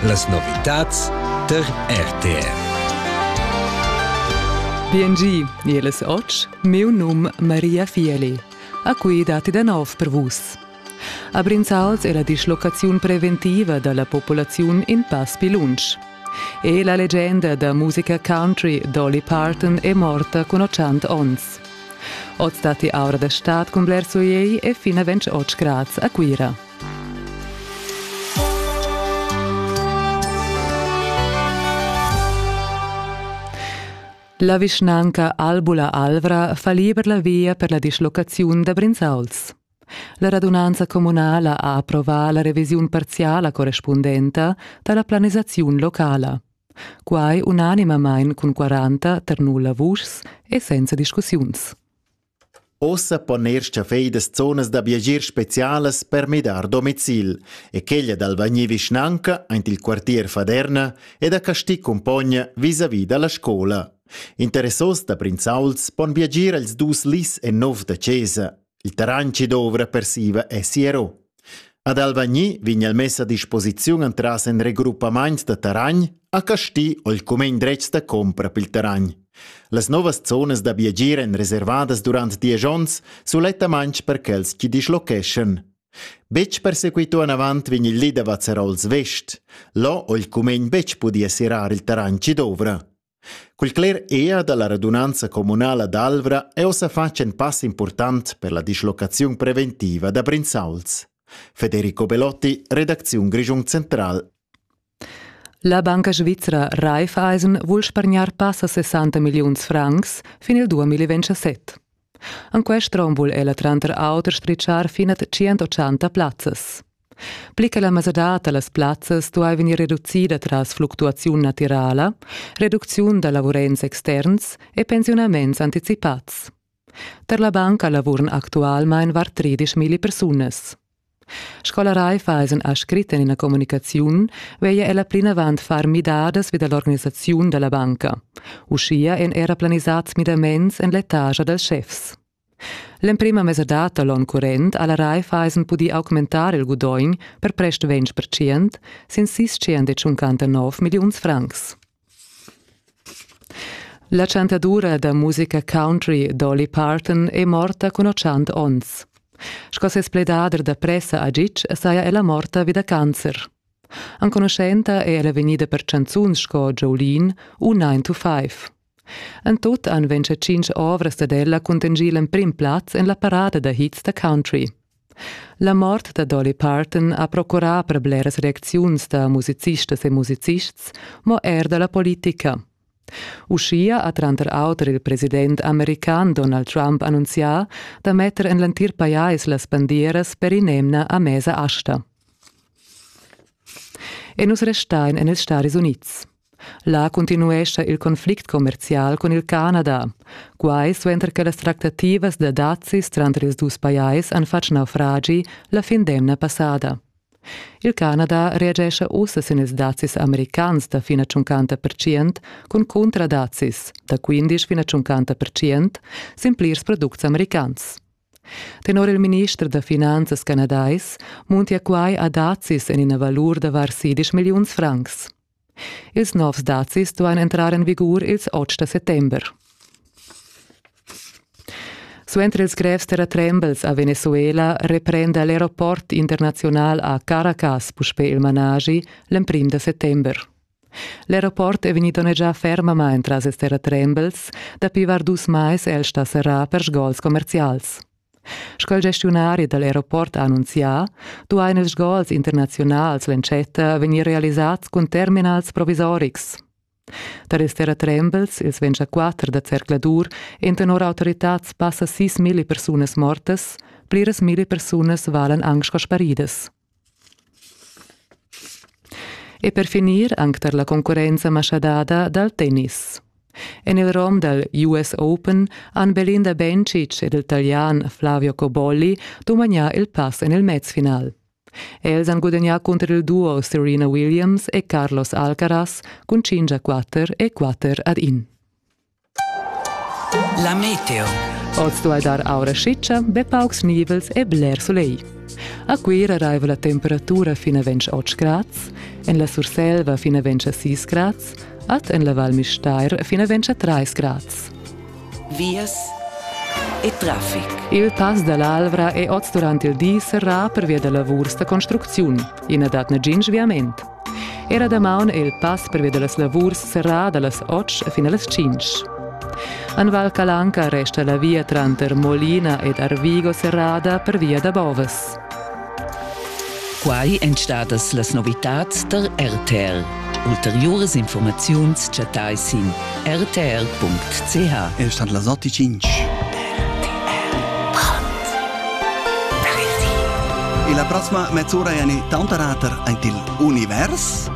Las novitads tar RTR. BNG, jeles och, meu num Maria Fieli. A qui datti da nov per vus. A Brinzals è la dislocaziun preventiva dalla popolaziun in pass più lunsch. E la leggenda da musica country Dolly Parton è morta con 80 ons. Oz datti aura da stad con bler soleil e fin a 20 oz grads a Cuira. La vischnanca Albula Alvra fa liber la via per la dislocaziun da Brinzauls. La radunanza communala ha approvà la revisiun parziala correspundenta da la planisaziun locala. Quai unanimamain cun 40 tar nulla vuschs e senza discussiuns. Ussa pon eir schaffedas zonas da viagier specialas per midar domicil e quella dal vagnir vischnanca aint il quartier Faderna e da Casti cumpogna visavi da la scoula. Interessos da Brinzauls pon viagier als dus lis e nov da chesa. Il terrain chi dovra persiva è siero. Ad Alvagni vegn el mess a disposiziun entras in regroppament da terragn a Casti o il cumegn dretg da compra pil terragn. Las novas zonas da viagir èn reservadas durant diesch onns sulettamain per quels chi dischlocheschan. Betg persequitò anavant vegn il li da Vazzarols Vest. Là ho il cumegn betg pudì assirar il terragn chi dovra. Cul cler ea dalla radunanza communala d'Alvra è ossa fatg in pass important per la dislocaziun preventiva da Brinzauls. Federico Belotti, redacziun Grischung Central. La banca svizra Raiffeisen vul spargnar passa 60 milliuns francs fin il 2027. En quest rom vul ella tranter auter spritschar fin a 180 plazzas. Pli che la mesadad da las plazzas stuai vegnir reducida tras fluctuaziun natirala, reducziun da lavurents externs e pensiunaments anticipads. Per la banca lavuran actualmain var 13.000 persunas. Scola Raifa es ün ha scrit in ina comunicaziun, veglia ella plinavant far midadas vi da l'organisaziun da la banca. Uschia èn era planisats midaments en l'etage dals schefs. L'emprima mesadad da l'onn current ha la Raiffeisen pudì augmentar il gudogn per prest 20% sin 659 milliuns francs. La chantadura da musica country Dolly Parton è morta cun otschant onns. Sco ses pledader da pressa agic saja ella morta vi da cancer. Enconuschenta è ella vegnida per chanzuns sco Jolene u 9 to 5. En tut han ventg tschintg ovras dad ella cuntegì l'emprim plaz en la parada da hits da country. La mort da Dolly Parton ha procurà per bleras reacziuns da musicistas e musicists, mo er da la politica. Uschia ha tranter auter il president american Donald Trump annunzià da metter en l'entir pajais las bandieras per in'emna a mesa asta. E nus restain en ils Stati Unids. Là continuescha il conflict commerzial cun il Canada. Quai suenter che las tractativas da dazis tranter ils dus pajais han fatg naufragi la fin d'emna passada. Il Canada reagescha ussa sin ils dazis americans da fina 50% cun cuntradazis da 15 fina 50% sin plirs products americans. Tenor il minister da finanzas canadais muntia quai a dazis en ina valur da var 16 milliuns francs. Ils novs dazis duain entrar en vigur ils otg da settember. Suenter ils grevs terratrembels a Venezuela reprenda l'aeroport internaziunal a Caracas puspè il managi l'emprim da settember. L'aeroport è vegnì donnegià fermamain tras ils terratrembels. Dapi var dus mais è el stà serrà per sgols commerzials. Sco il gestiunari dal aeroport ha annunzià, duain ils gols internaziunals l'entschatta vegnir realisads cun terminals provisorics. Da rester a trembels ils 24 da zercladur en tenor autoritads passa 6.000 persunas mortas, pliras mille persunas valan anc sco sparidas. E per finir anc tar la concurrenza maschadada dal tennis. En il rom dal US Open han Belinda Bencic ed il Talian Flavio Cobolli dumagnà il pass en il mezfinal. Els han gudagnà cunter il duo Serena Williams e Carlos Alcaraz cun 5 a 4 e 4 ad 1. La meteo. Oz duai dar aura schicha, be paucs nivels e bler sulegl. A Cuira raiva la temperatura fin a 28 grads, en la Surselva fin a 26 grads, ad en la Val Mistair fin a 23 grads. Vias e traffic. Il pass dall'Alvra è oz durant il di serrà pervia da lavurs da construcziun. Ina dat negin sviament. Era damaun è il pass pervia da las lavurs serrà da las otg fin a las tschintg. En Val Calanca resta la via tranter Molina ed Arvigo serrada pervia da bovas. Quai èn stadas las novitads tar RTL. Ulteriuras informaziuns chattai sin rtr.ch El stat las 8.5. E la prossima mezz'ora è eine Taunterater ein il Univers.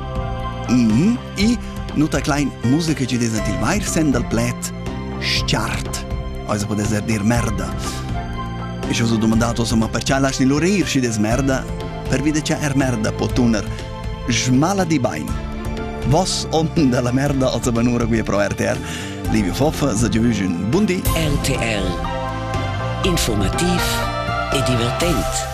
Mm e nuta klein musica che des il vair sen dal pled start. Also può essere dir merda. Ich ho so domandato, so, ma perché lasci l'orir si des merda? Per vide che er merda può tuner Schmaladi bain. Vos onn dalla merda als abanura qui pro RTR. Livio Foffa, se giovügen bundi. RTR. Informativ e divertent.